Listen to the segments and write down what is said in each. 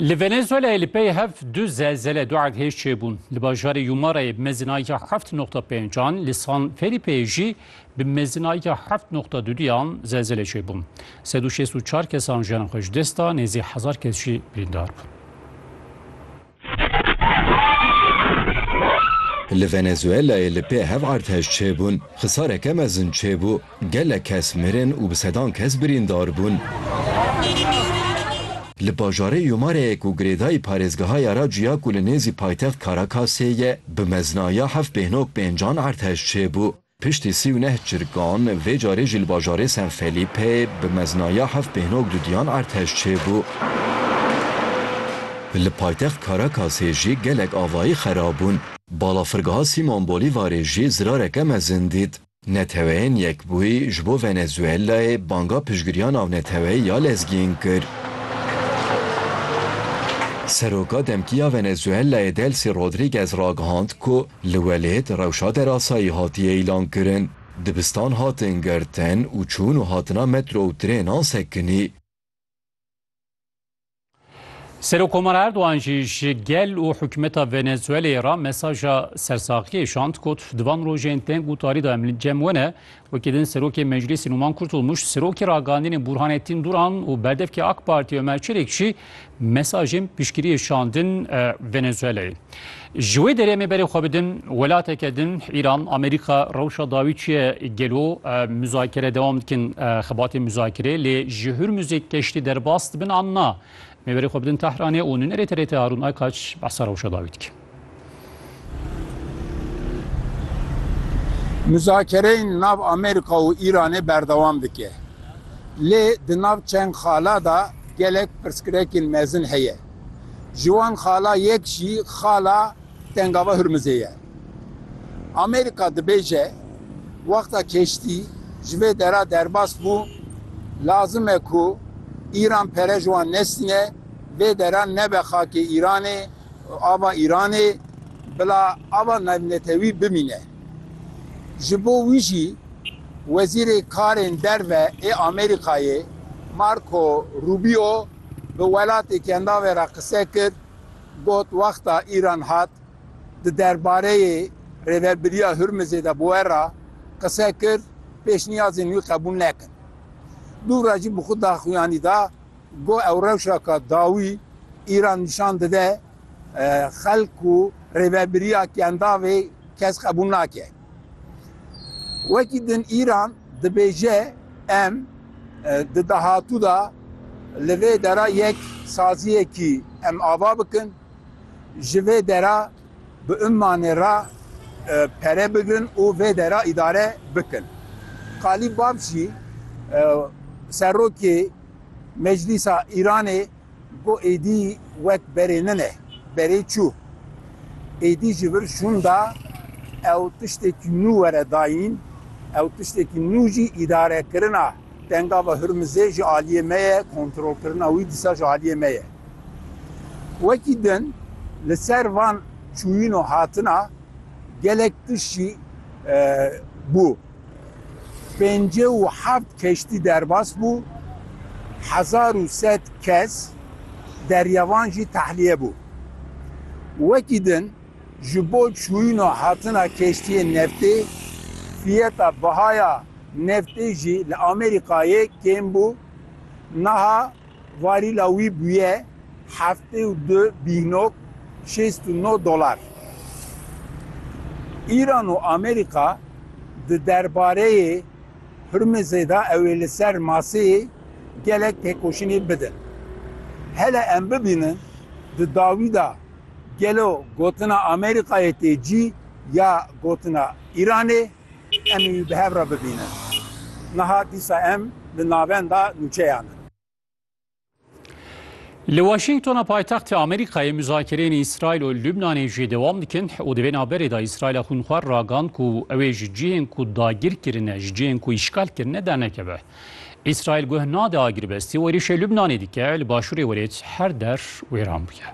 Li Venezuelayê li pey hev du zelzele du erdhêj çêbûn. Li bajarê Yumarayê bi mezinayeke heft noqta pêncan, li San Felîpeyê jî bi mezinayeke heft noqta duduyan zelzele çêbûn. Sed û şêst û çar kesan jiyana xwe ji dest da, nêzî hezar kes jî birîndar bûn. Li Venezuelayê li pê hev artêş çêbûn, xisareke mezin çêbû, gelek kes mirin û bi sedan kes birîndar bûn. Li bajarê Yumareyê ku girêdayî parêzgeha ya ra cuya ku li nêzî paytext Caracasê ye, bi meznaya heft bêhnok pêncan artêş çêbû. Piştî sî û neh çirkan, vê carê jî li bajarê San Felipe bi meznaya heft pêhnog dudiyan artej çêbû. Li paytext Caracasê jî gelek avayî xerab bûn. Balafirgeha Simon Bolîvarê jî zirareke mezin dît. Neteweyên Yekbûyî ji bo Venezuelayê banga piştgiriya navneteweyî ya lezgîn kir. Seroka demkî ya Venezuelayê Delcy Rodriguez ragihand ku Li welêt rewşa derasayî hatiye îlankirin, dibistan hatin girtin û çûn û hatina metro û trênan sekinî. Serokkomar Erdogan jî ji gel û hikûmeta Venezuelayê re mesaja sersaxiyê şand, got, Di van rojên tên gutarî de em li cem we ne, Wekî din Serokê Meclîsê Nûman Kurtulmuş, Serokê Ragandînê Bûrhanettin Duran û Berdevkê AK Partî Ömer Çelik jî mesajên piştgiriyê şandin Venezuelayê. Ji wê derê em ê berê xwe bidin welateke din Îran, Amerîka rewşa dawî çi ye gelo muzakere dewam dikin xebatên muzakerê lê ji Hurmuzê keştî derbas dibin an na? Em ê berê xwe bidin Tehranê û nûnerê TRT Harûn Aykaç behsa rewşa dawî dikin. Muzakereyên nav Amerîka û Îranê berdewam dike. Lê di nav çend xala de gelek pirsgrekên mezin heye. Ji wan xala yek jî xala Tengava Hurmizê ye. Amerîka dibêje, Wexta keştî ji vê dera derbas bû, lazim e ku Îran pere ji wan nestîne, vê dera nebe xakê Îranê. Ava Îranê bila ava navnetewî bimîne. Ji bo wî jî Wezîrê Karên Derve ê Amerîkayê Marco Rubio bi welatê kendavê re qise kir, got wexta Îran hat di derbareyê Rêvebiriya Hurmizê de bi we re qise kir, pêşniyazên wî qebûl nekin. Dûvra jî bi xwe daxuyanî da, Got ew rewşeke dawî îra nîşan dide xelk ku rêvebiriya kendavê kes qebûl nake. Wekî din Îran dibêje em di dahatû de li vê dera yek saziyekî em ava bikin, ji vê dera bi ummanê re pere bigrin û vê dera îdare bikin. Qalî Bapjî serokê Meclîsa Îranê got êdî wek berê nine, berê çû. Êdî ji vir şûnda ew tiştekî nû were dayîn, ew tiştekî nû jî îdarekirina Dengava Hurmizê ji aliyê me ye, kontrolkirina wî dîsa ji aliyê me ye. Wekî din li ser van çûyîn û hatina gelek tişt jî bû. Pêncî û heft keştî derbas bû, hezar û sed kes deryavan jî tehliye bû. Wekî din ji bo çûyîna hatina keştiyên neftê, fiyeta bihaya neftê jî li Amerîkayê kêm bû, niha Varîla wî bûye heftê û du bînok şêst û no dolar. Îran û Amerîka di derbareyê Hurmizê de ew ê li ser maseyê gelek têkoşînê bidin. Hele em bibînin di dawî de gelo gotina Amerîkayê tê cî ya gotina Îranê? Em ê bi hev re bibînin. Niha dîsa em li navenda nûçeyan in. Li Washingtona paytextê Amerîkayê muzakereyên Îsraîl û Lubnanê jî dewam dikin û di vê navberê de Îsraîla xwînxwar ragand ku ew ê ji cihên ku dagir kirine, ji cihên ku îşgal kirine dernekeve. Îsraîl guh nade agirbestî û êrîşê Lubnanê dike li başûrê welêt her der wêran bûye.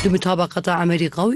Di mutabaqata Amerîka û